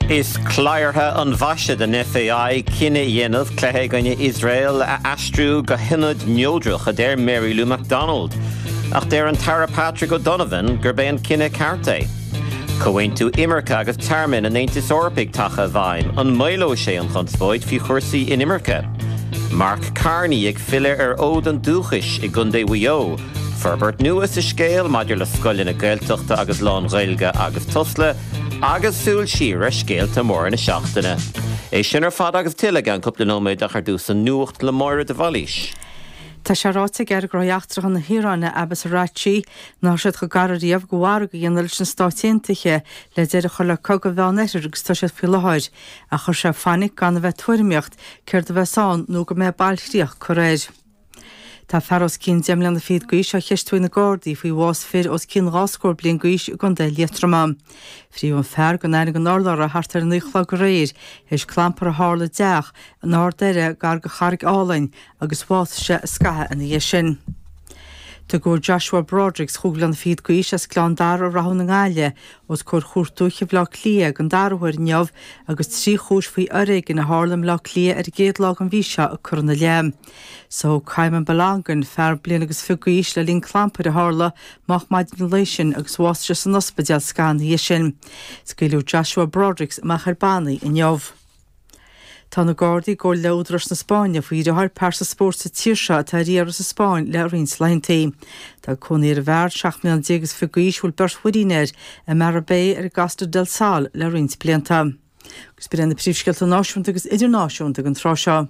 Is cladhartha an mhaise den FAI cinneadh a dhéanamh cluiche i gcoinne Iosrael a aistriú go hionad neodrach, a deir Mary Lou McDonald. Ach deir an tAire Patrick O'Donovan gurb é an cinneadh ceart é. Comhaontú imirce agus tearmainn an Aontais Eorpaigh tagtha i bhfeidhm, an maolóidh sé an chonspóid faoi chúrsaí inimirce? Mark Carney ag filleadh ar fhód an dúchais i gcontae Mhaigh Eo. Forbairt nua sa scéal maidir le scoileanna Gaeltachta agus lán-Ghaeilge agus Tusla agus súil siar ar scéalta móra na seachtaine. É sin ar fad agus tuilleadh i gceann cúpla nóiméad ach ar dtús an Nuacht le Máire de Bhailís. Tá sé ráite ag Aire Gnóthaí Eachtracha na hIaráine Abbas Araghchi nach raibh siad chomh gar ariamh do mhargadh a dhéanamh leis na Stáit Aontaithe le deireadh a chur le cogadh an Mheánoirthir agus atá siad faoi láthair ach chuir sé fainic gan a bheith ag tuairimíocht céard a bheas ann nó go mbeidh bailchríoch curtha air. Tá fear os cionn deich mbliana fichead d'aois á cheistiú ag na Gardaí faoi bhás fir os cionn dhá scór bliain d'aois i gContae Liatroma. Frítheadh an fear gan aithne gan urlabhra thart ar a naoi a chlog aréir tar éis clampar a tharla i dteach in Ard Doire gar do Charraig Álainn agus bhásaigh sé scaitheamh ina dhiaidh sin. Tugadh Joshua Brodericks chúig mbliana fichead d'aois as Gleann Dara i Rathún na Gaillimhe os comhair Chúirt Dúiche Bhaile Átha Cliath den dara huair inniu agus trí chúis faoi fhoréigean a tharla i mBaile Átha Cliath ar an gcéad lá den mhí seo curtha ina leith. Sádh Qayyum Balogun fear bliain agus fichead d'aois le linn clampair a tharla moch maidin an lae sin agus bhásaigh sé san ospidéal scaitheamh ina dhiaidh sin. Scaoileadh Joshua Brodericks amach ar bannaí inniu. Tá na Gardaí i gcomhar le údaráis na Spáinne faoi dheartháir pearsa spóirt sa tír seo atá ar iarraidh sa Spáinn le roinnt laethantaí. Tá cónaí ar an bhfear, seacht mbliana déag agus fichead d'aois a bhfuil beirt mhuirín air, i Marbella ar an gCosta del Sol le roinnt blianta. Agus b'in na príomhscéalta náisiúnta agus idirnáisiúnta ag an tráth seo.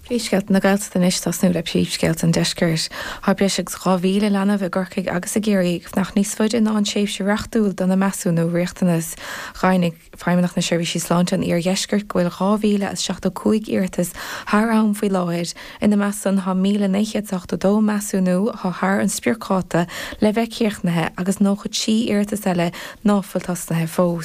Príomhscéalta na Gaeltachta anois, tosnú le príomhscéalta an deiscirt. Tá breis agus 2,000 leanbh i gCorcaigh agus i gCiarraí ag fanacht níos faide ná an tréimhse reachtúil dona measúnú riachtanas. Dheimhnigh Feidhmeannacht na Seirbhísí Sláinte an Iardheiscirt go bhfuil 2,075 iarratas thar am faoi láthair. Ina measc san tá 1,982 measúnú atá thar an spriocdháta le bheith críochnaithe agus 93 iarratas eile ná fuil tosnaithe fós.